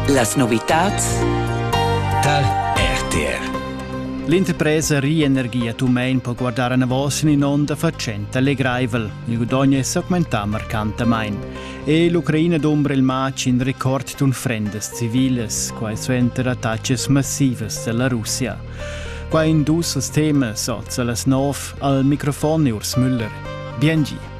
Las novitads tal RTR. L'interpresa Rienergia Tumein può guardare anavos in un'onda facente allegraivel. Il guadagno è augmentà marcantamain. E l'Ucraina d'ombra il match in record d'un frendas civiles, quai suenter attacches massivas dalla Russia. Qua in dus temas, oz las nov, al microfon Urs Müller. Bien gi.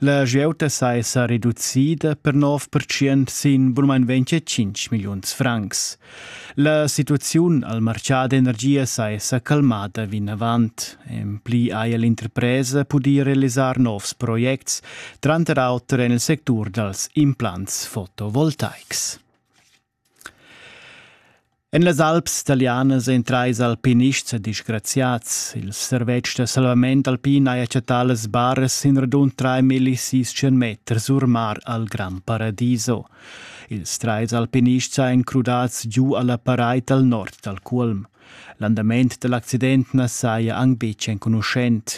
La giauta saja reducida per 9% sin bunmain 25 milliuns francs. La situaziun al martgà d'energia saja calmada vinavant. En pli haja l'interpresa pudì realisar novs projects, tranter auter en il sectur dals implants fotovoltaics. En las alps talianas ein trais alpinists disgraziats. Il servetsch da salvament alpin ha chattà las baras sin radund 3.600 meters or mar al Gran Paradiso. Ils trais alpinists ein crudads giu alla paraid al nord dal Cuolm. L'andament dall'accident na saja anc betg enconuschent.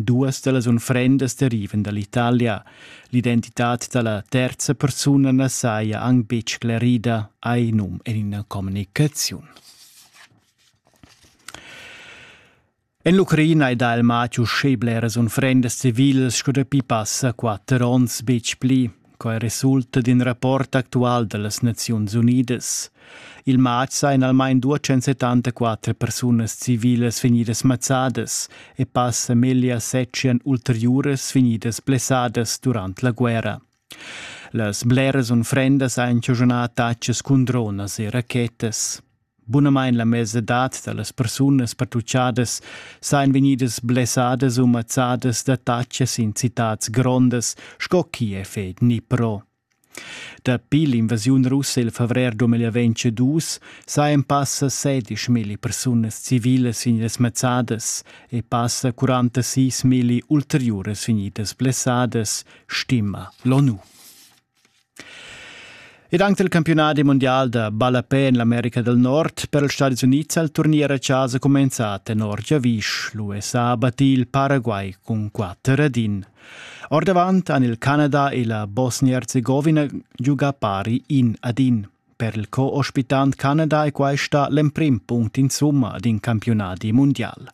Duas da las unfrendas derivan da l'Italia. L'identitad da la terza persuna na saja anc betg sclerida, hai num en ina communicaziun. En l'Ucraina è da il Mathiu sche bleras unfrendas civilas sco dapi passa quatter onns betg pli. Quai resulta d'in rapport actual da las Naziuns Unidas. Il matg sajan almain 274 persunas civilas vegnidas mazzadas e passa meglio settian ulteriuras vegnidas blessadas durant la guerra. Las bleras unfrendas han giugnà attacks cun dronas e rachetas. Bunamain la mesadad da las persunas pertuchadas sajan vegnidas blessadas u mazzadas da tatschas in citads grondas sco Kiev e Dnipro. Dapi l'invasiun russa il favrer 2022 sajan passa 16.000 persunas civilas vegnidas mazzadas e passa 46.000 ulteriuras vegnidas blessadas, stima l'ONU. Ed anche il campionat mondial da ballapè en l'America del Nord per ils Stati Unids ha il turnier a chasa cumenzà tenor giavisch. L'USA ha battì il Paraguay cun quatter ed in. Ordavant han il Canada e la Bosnia-Herzegowina giugà pari in ad in. Per il co-ospitant Canada è questa l'emprim punct insumma ad in campionat mundial.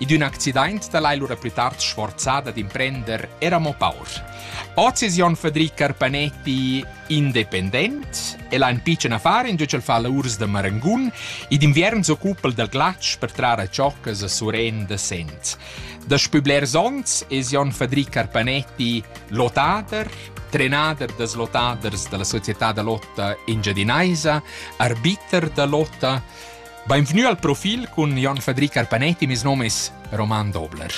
In ün accident da l'hai lura plü tard sforzada d'imprender era mo paur. Oz es Jon Fadri Carpanetti independent. El ha ün pitschen affar in giögl fa la urs da marangun e d'inviern s'occupa del glatsch per trar a choccas a suren da Sent. Daspü blers ons es Jon Fadri Carpanetti lotader, trenader das lotaders della società da lotta engiadinaisa, arbiter da lotta, Beinvgnü al profil cun Jon Fadri Carpanetti, mes nom es Roman Dobler.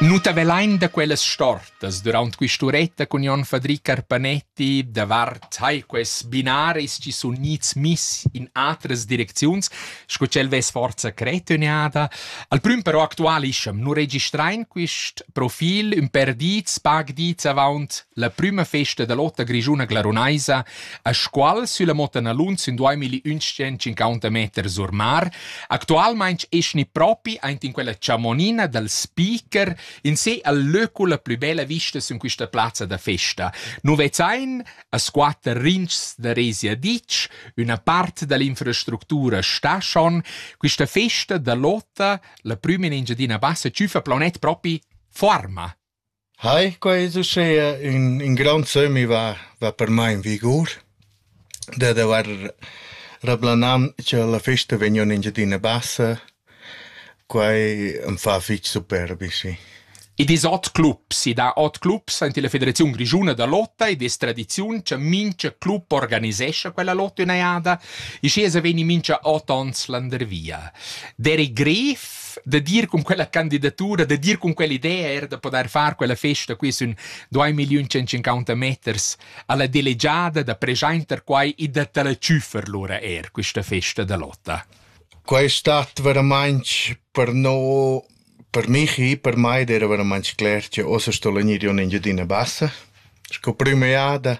Nu t'avelain da quellas stortas durant quist'uretta cun Jon Fadri Carpanetti davart hai quels binaris chi sun gnits miss in atras direcziuns sco ch'el vess forza cretüniada. Al prüm però actualischa'm, nu registrain quist profil ün per dits, pag dits avaunt la prüma festa da lotta grischuna glarunaisa, a squal sülla Motta Nalunz in 2150 meter sur mar. Actualmaing eschni propi aint in quella chamonina dal speaker in se al löcula plü bella vista sün quista plazza da festa. Nu vezzain A squatter rintgs da Rezia ditg, üna part da l'infrastructura sta schon. Quista festa da Lotta, la prüma in Engiadina Bassa, tschüfa planet propi forma. Hai, quai es uschea ün, ün grand sömmi va, va per mai in vigur. Da d'avair rablanam cha la festa vegna in Engiadina Bassa Quai am fa fich superbi, sì. I dis ot clubs, i dà ot clubs aint illa Federaziun grischuna da lotta ed es tradiziun cha mincha club organisescha quella lotta üna jada. I schi esa vegni mincha ot ons landervia. Derek Gref, da dir cun quella candidatura, da dir cun quell'idea eir da podair far quella festa qui sün 2.150 meters a la delegiada da preschainter quai e da ta la tschüffer lura eir quista festa da lotta. Quai stat veramainch per no per Michi, per mai ed eira veramainch cler che uossa sto vegnir ün Engiadina Bassa sco prüma jada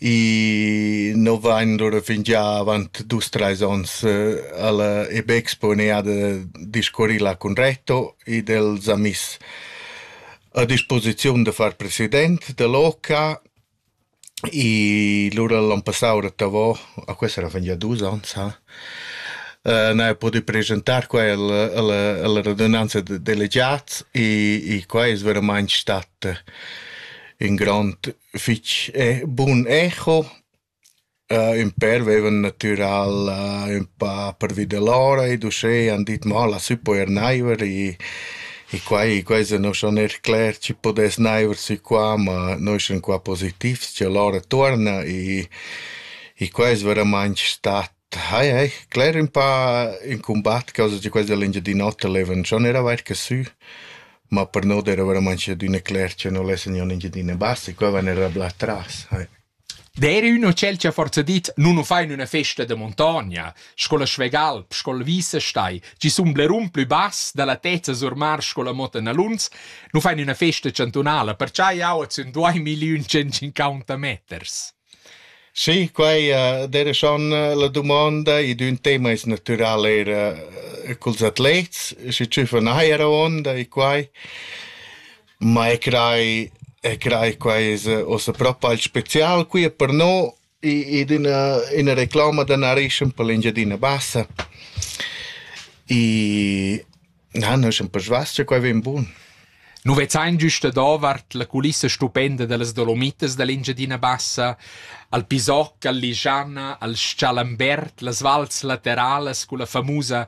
i no vain lura fingià avant dus trais ons a la Ebbexpo üna jada discurrì là cun Reto ed el s'ha miss a disposiziun da far president da l'OCA I lura l'on passau rettavò, a questa era fingià dus ons ha, n'haja pudü preschantar quel alla alla radunanza da delegats e e quai es veramaing stat ün grond fich bun echo Ün pèr veivan natüral ün pa pervi da l'ora ed uschè han dit mo la sü po eir naiver e e quai quai se no schon eir cler chi pudess naiver sü qua, ma noi sun qua positivs cha l'ora tuorna e e quai es veramaing stat hai hai cler ün pa ün cumbat causa cha quels da l'Engiadin'Ota levan schon eir averta sü, ma per no d'eira veramaing adüna cler cha no lessa gnir ün Engiadina bassa e qua van eir a bler tras, hai. D'eira ün hotel cha forsa dit nu nu fa in üna festa da muntogna, sco la Schwegalp, sco il Wiesestein, chi sun blerun plü bass da la tezza sur mar sco la Motta Naluns, nu fa in üna festa chantunala, percià jau at sun duaimigliun tschentscinquanta meters. Sì, quai d'eira schon la dumonda ed ün tema es natüral eir culs atlets, schi tschüffa na eira onda e quai. Ma e crai e crai quai es uossa propa il spezial qui per no ed üna üna reclama da narreschan per l'Engiadina Bassa. I na, no eschan persvas cha quai vain bun. Nu vezzain güsta davart la culissa stupenda da las Dolomitas da l'Engiadina Bassa al Pisocc, al Ligiana, al S-chalambert, las vals lateralas culla famusa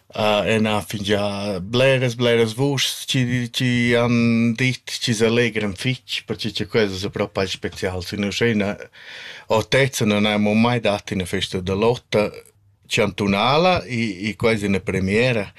ena fingià bleras bleras vuschs chi chi han dit chi s'allegran fich perche cha quels es propi specials in uschena autezza non aimo mai dat üna festa da lotta chantunala e e quai es üna premiera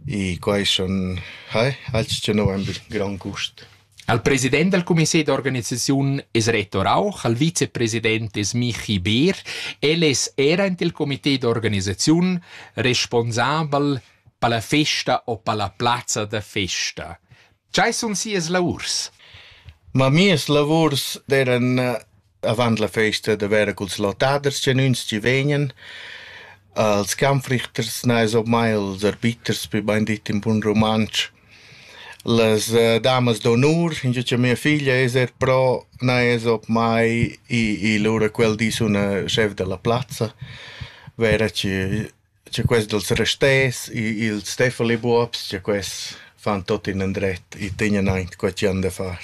e quai sun eh alch cha no vain be grand gust. Al president dal cumité d'organisaziun es Reto Rauch, al vicepresident es Michi Beer. El es era in il cumité d'organisaziun responsabel per la festa o per la plazza da festa. Chai sun sias lavurs? Ma mias lavurs d'eran avant la festa da vera culs lottaders genuins chi vegnan. Als Kampfrichters neis op mai els arbiters, wie bein dit in bun rumantsch. Las uh, damas d'onur, ingio cha mia figlia es er pro, neis op mai i, i lura quel dis üna schef da la plazza, vera chi Cha quest dals rasters, ils Steffeli-buobs, cha quests fan tuot inandret e tegnan aint co chi han da far.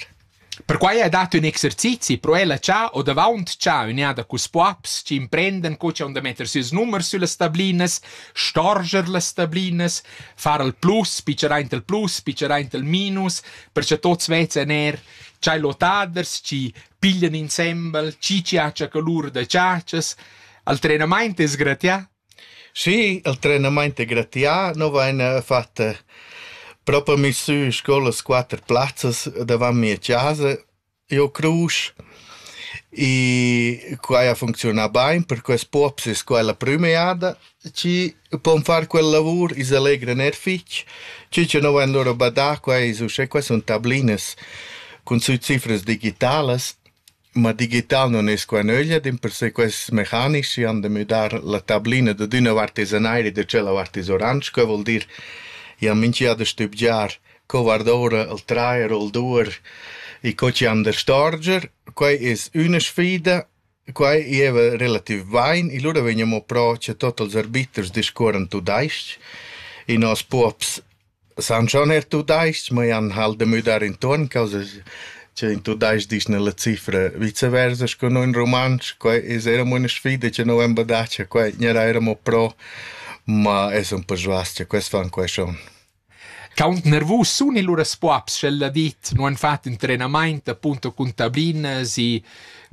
Perquai ha dat ün exercizi pro ella cha ho davaunt cha ün'eada culs poaps chi imprendan co cha han da metter sieus numers süllas stablinas, storger las stablinas, far al plus, pitschar aint al plus, pitschar aint al minus, per cha tuots vezan eir cha ils otaders chi piglian insembel, chi chi haja colur da chatschas. Il trenamaint es gratià Schi, il trenamaint è gratià. No vaina fatta propa misü sco las quatter plazzas davant mia chasa. Io crus e quai a funcziunà bain, per quels pops es quai la prüma jada chi pon far quella lavur, i s'allegran eir fich. Schi cha no vain lura badà, quai es uschè, quai sun tablinas cun sü cifras digitalas. Ma digital non es qua nöglia, dimpersè quests mecanics chi han da müdar la tablina dad üna vart es an aer e da tschella vart es oransch, que voul dir ja minchia da stübgiar co guard'oura il trair o il duer e co chi han da storger. Quai es üna sfida, quai gieva relativ bain e lura vegniamo pro cha tot ils arbiters discuorran tudais-ch e nos puobs San schon eir tudais-ch, ma jan halt da müdar intuorn causa cha in tudais-ch disch nella cifra vice versa scu no in rumantsch. Quai es eir amo üna sfida cha no vain badà cha quai gnerà eir amo pro, ma es ün po svast cha quels fan quai schon. Quaunt nervus sun illura spuabs sch'el ha dit, nu han fat ün trenamaint appunto cun tablinas i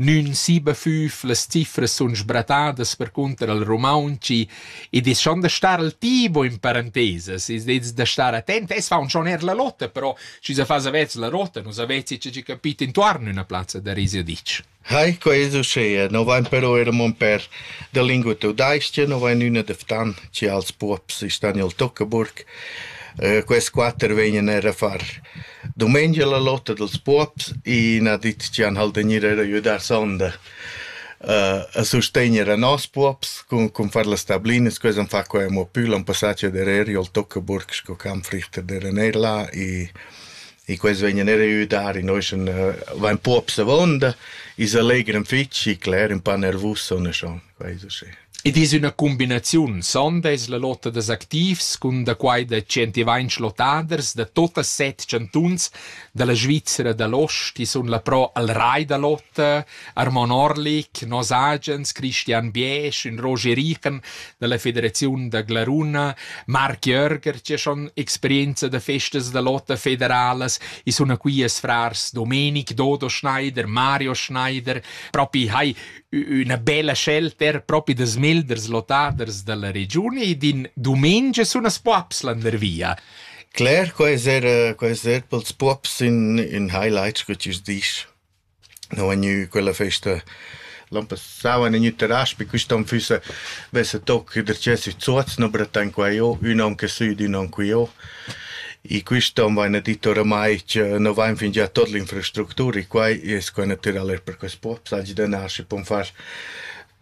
Nün sibafüf, las cifras sun sbratadas percunter al rumauntsch id es schon da star al tibo in parantesas, es dets da star attent. Es faun schon eir la lotta, però schi sa fas avezs la rotta, nu s'avez che capit intuorn üna plazza da Risiadic. Hai, quai es uschea, no vain però eir amo ün pèr da lingua tudais-cha, no vain üna da Ftan, chi als puobs i stan i'l Tuckeburg. Quest quatter vegnan eir a far Dumengia la lotta dals puobs, i n'ha dit chi han halt gnir eir ajüdà sonda a sustegner a nos puobs cun cun far las tablinas, quels han fat quai amo pü, l'an passà cha dereri al Toccaburg sco camp frichter d'eran eir là i i quels vegnan eir a ajüdar, i nois sun vain puobs avonda, i's allegran fich e cler ün pa nervus, sona schon. Id es üna cumbinaziun, sonda es la lotta dals activs cun da quai da tschentivainch lottaders da tuotas set chantuns da la Svizra da l'ost chi sun là pro al Rai da Lotta, Armon Orlik, Nos Agens, Christian Biesch, ün Roger Richen da la Federaziun da Glaruna, Marc Jörger chi ha schon experienza da festas da lotta federalas, i suna quias frars Domenic, Dodo Schneider, Mario Schneider, propi hai üna bella scelta propi da smelders lottaders dalla regiun ed in dumengia sun as poaps landervia. Cler, quai es era, quai es er pels puops in, in highlight, scu chi's disch. No è gnü quella festa l'an passau an gnü terras, pi quist'on füssa vessa toc der chesi zuoz, no brettan qua jo, ün on che sü, ün on qui jo. I quist on vaina dit oramai cha no vain fingià tuot l'infrastructura e quai es quai natüral eir per quest post, sagli da nascher pon far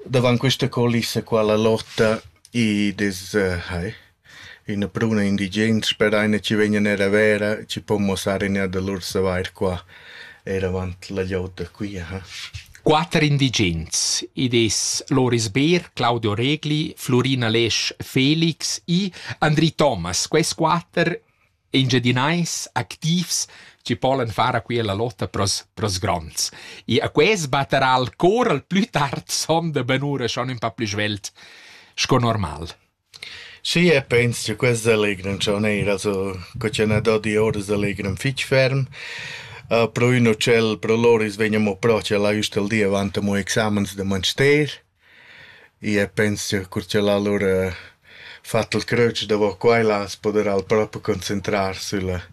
davant quista culissa qua la lotta i des hai üna pruna indigens per aina chi vegnan eir a vera chi pon muossar iina da lur savair qua. Eravant la glieud da Cuira, ha. Quatter indigens. Id es Loris Beer, Claudio Regli, Flurina Lesch, Felix e Andri Thomas. Quels quatter engiadinais activs chi polan far a quia la lotta pros, pros gronds. E a quels batterà il cor al plü tard son da ben ura schon ün pa plü svelt sco normal. Schi, e pens cha quests allegran cha ün eira so co ch'eu n'ha do dioras allegran fich ferm. Però ün utschel pro lur i's vegn amo pro cha l'ha üst al di avant amo examens da manster. I e pens cha cur cha l'ha lur fat il cröč davo qua e là as poderà al propi concentrar sülla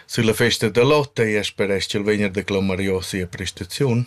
sülla festa da lotta e ea speresch ch'el vegna da clamarios sia prestaziun.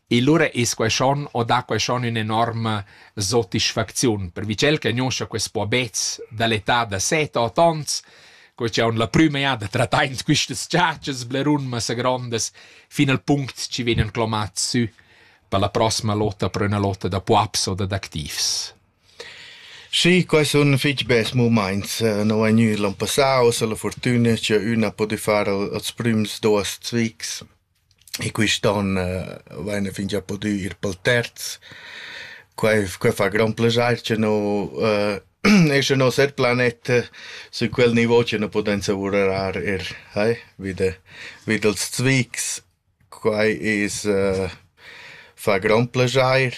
E lura es quai schon o dà quai schon ün'enorma sotisfacziun, per tschel che gnoscha quest puobets da l'età da set, ot ons, co cha haun la prüma jada trattà in quistas chatschas blerun massa grondas, fin al punct chi vegnan clomats sü per la prossima lotta per üna lotta da puaps o dad activs. Sì, quai sun fich bels mumaints. No è gnü l'on passà, uossa la furtüna cha üna ha pudü far als prüms duos zvics. E quist'on vaina fingià pudü ir pel terz. Quai f- quai fa grond plaschair cha no e scha nos er planet sün quel nivo cha nu pudem savurar eir eh vi da vi dals zvigs. Quai es fa grond plaschair.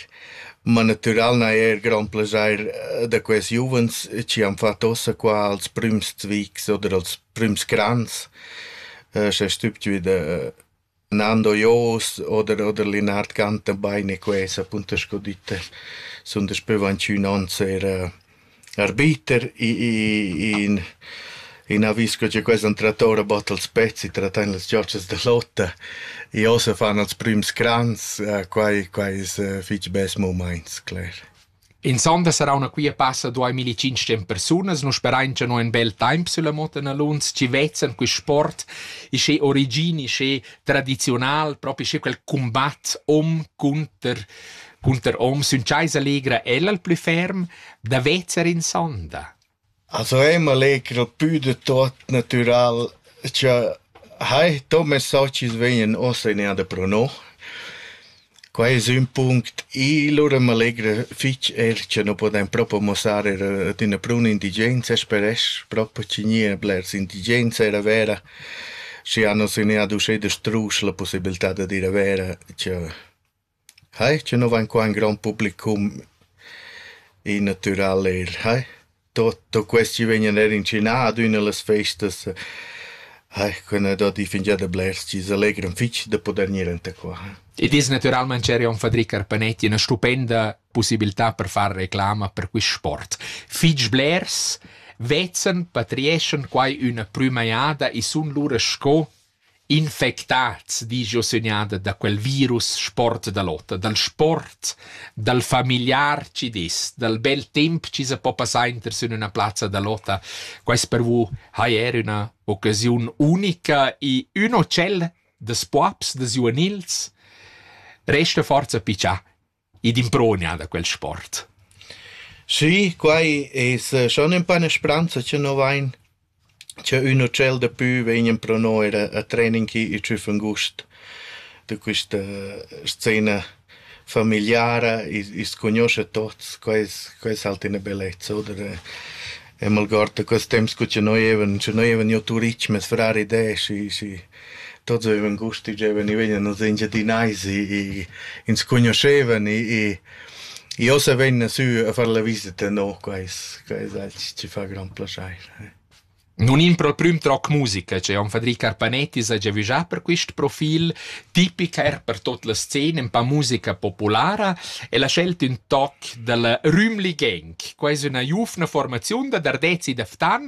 Ma natüral n'ha eir grond plaschair da quels giuvens chi han fat uossa qua als prüms zvigs oder als prüms grands, s'è stübgiü da Nando Joos oder oder Linard Gantenbein e quesa punta sco ditta sun daspö vantgnü ons eir arbiter in in avis co cha quels han trattà ora bod als pezzi, trattan las giotschas da lotta e ossa fan als prüms grands, quai quai es fich bels mumaints, cler. In sonda sarauna quia passa duai milli-tschintscent persunas, nu sperain cha no in bel taimp sülla moda naluns chi vezan quist sport isché origin, isché tradiziunal, propi isché quel cumbat hom cunter cunter hom. Sün chais allegra el al plü ferm da vezer in sonda. As ho emer leger pü da tuot natüral cha hai. Do messaggi vegnan uossa in eir pro no. Quai es ün punct. I lura m'allegra fich eir cha nu pudem propo muossar eir ad üna bruna indigenza, speresch propo chi gnia blers indigens eir a Vera, schi hanos in eir ad uschè da struscher la pussibiltà dad ir a Vera, cha Hai, che no vain qua ün grond publicum in natüral eir, hai. Tuot quest chi vegnan eir incinà ad üna da las festas, hai, quella dad i fingià da blers chi's allegran fich da pudair gnir anta qua. Id es natüralmaing ch'eir Fadri Carpanetti üna stupenda pussibiltà per far reclama per quist sport. Fich blers vezzen, patrieschan quai üna prüma jada e sun lura sco Infectads disch jeu sünada da quel virus sport da l'oter, dal sport, dal familiar chi dess, dal bel temp chi sa po passar inter sün üna plazza da lotta. Quaist per vus haja eir üna occasiun unica i ün hotel da spuabs, da giuvenils. Resta forza pitschà Id improgna da quel sport. Schi, quai es schon ün pa üna spranza cha no vain, cha ün utschel dapü vegnan pro no eir a trening chi tschüf ün gust da quista scena famigliara, i's cugnuoscha tuots, quai es quai es halt üna bellezza, oder? E m'algord da quels temps cu cha noi evan, cha noi evan jo turich, meis frar id e, schi schi Tots avevan gust tgi giovan i vegnan nus Engiadinais e ins cugnuoschevan e e e ossa vegnan sü a far la visita no, quai es quai es els chi fa grand plaschair. Non in pro prüm troc musica, cioè on Fadri Carpanetti s'ha giavüschà per quist profil tipic eir per tot la scena un pa musica populara e l'ha scelt ün toc da la Rümli Gang. Quai es üna giuvna formaziun da Dardez e da Ftan